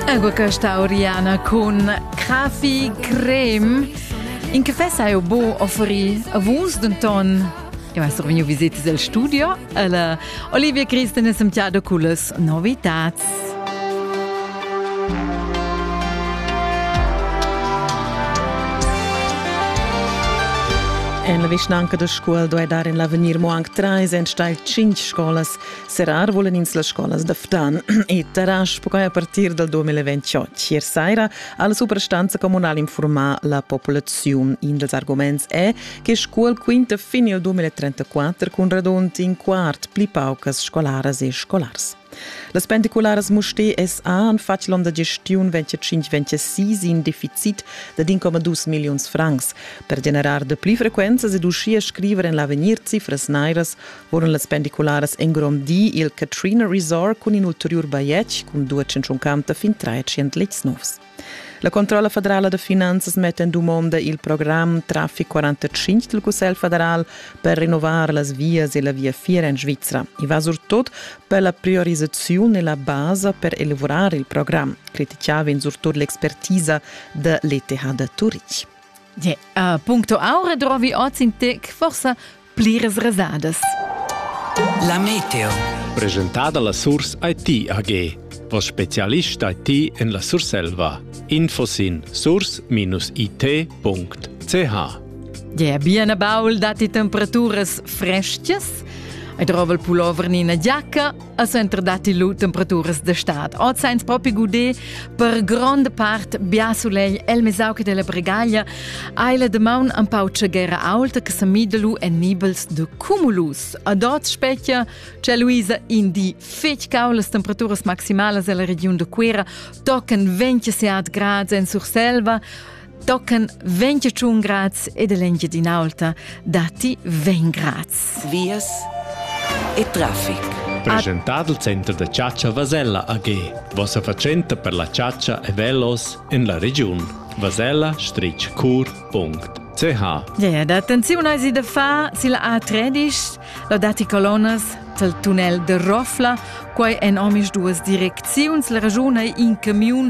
Ego questa Oriana con Krafi Creme. In caffè sai o bo offri a vus denton Eu ha survegniu visitas al studio alla Olivia Christen e Santiago Culas novitats. En la vischnanca da Scuol doi dar in l'avegnir mo anc treis enstagl cinc scolas Serrar volan ins las scolas da Ftan e Tarasch perquai a partir dal 2028. Ier saira ha la suprastanza communal informar la populaziun. In dals arguments è che scuol quinta fin il 2034 cun radund in quart pli paucas scolaras e scolars. Las pendicularas Mustè SA han fatg l'onn da gestiun 25-26 in deficit da 1,2 milliuns francs. Per generar de pli frequenzas ed uschia scriver en l'avegnir cifras nairas Furono las pendicularas engrondì il Katrina Resort cun in ulteriur bajetg cun 250 fin 300 letgs novs. La Controlla federala da finanzas metta en dumonda il programm Traffic 45 del Cussegl federal per rinnovar las vias e la viafier en Svizra. I va surtut per la priorisaziun e la basa per elaborar il programm, criticava in surtut l'expertisa de l'ETH de Turich. Ja, äh, puncto aure trovi oz in tec, forse pliras resadas. La Meteo. Presentada la Surs IT AG. Vos specialist IT en la Surselva. Info sin surs-it.ch Ja, bien baul datti temperaturas frestgas. Ei drova il pullover ni ina giacca, al center datti lu temperaturas d'estat. Oz ein propi gudé per gronda part bia sulegl el mesau che della bregaglia. Ei la demaun un pau tschegera aulta che semida lu en nibels de cumulus. Ad oz specchia c'è Luisa in di fetg cau las temperaturas maximalas ella regiun de Cuera tocan 27 grad en Surselva. Tochen ventg tschun grads ed l'Engiadin'Aulta datti vegn grads. Vias e traffic. Presentad il center da chatscha Vasella AG. Vossa fatschenta per la chatscha e velos en la regiun. Vasella strich cur punct. CH. Yeah, da attenziun eisi da far sil A13, la datti colonnas tel tunnel de Rofla, quai en omis duas direcziuns, la ragiun ei in camiun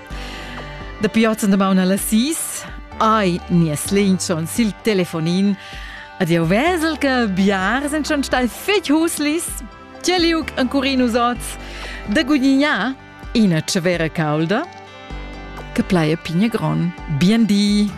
Dapi oz en damaun alla sis ai nies linchon sil telefonin ad jau vesel che biar sind schon stai fetg huslis Teliuc en Curinus oz da gudignar ina cevera caulda che plaia pigna gron. Bien di!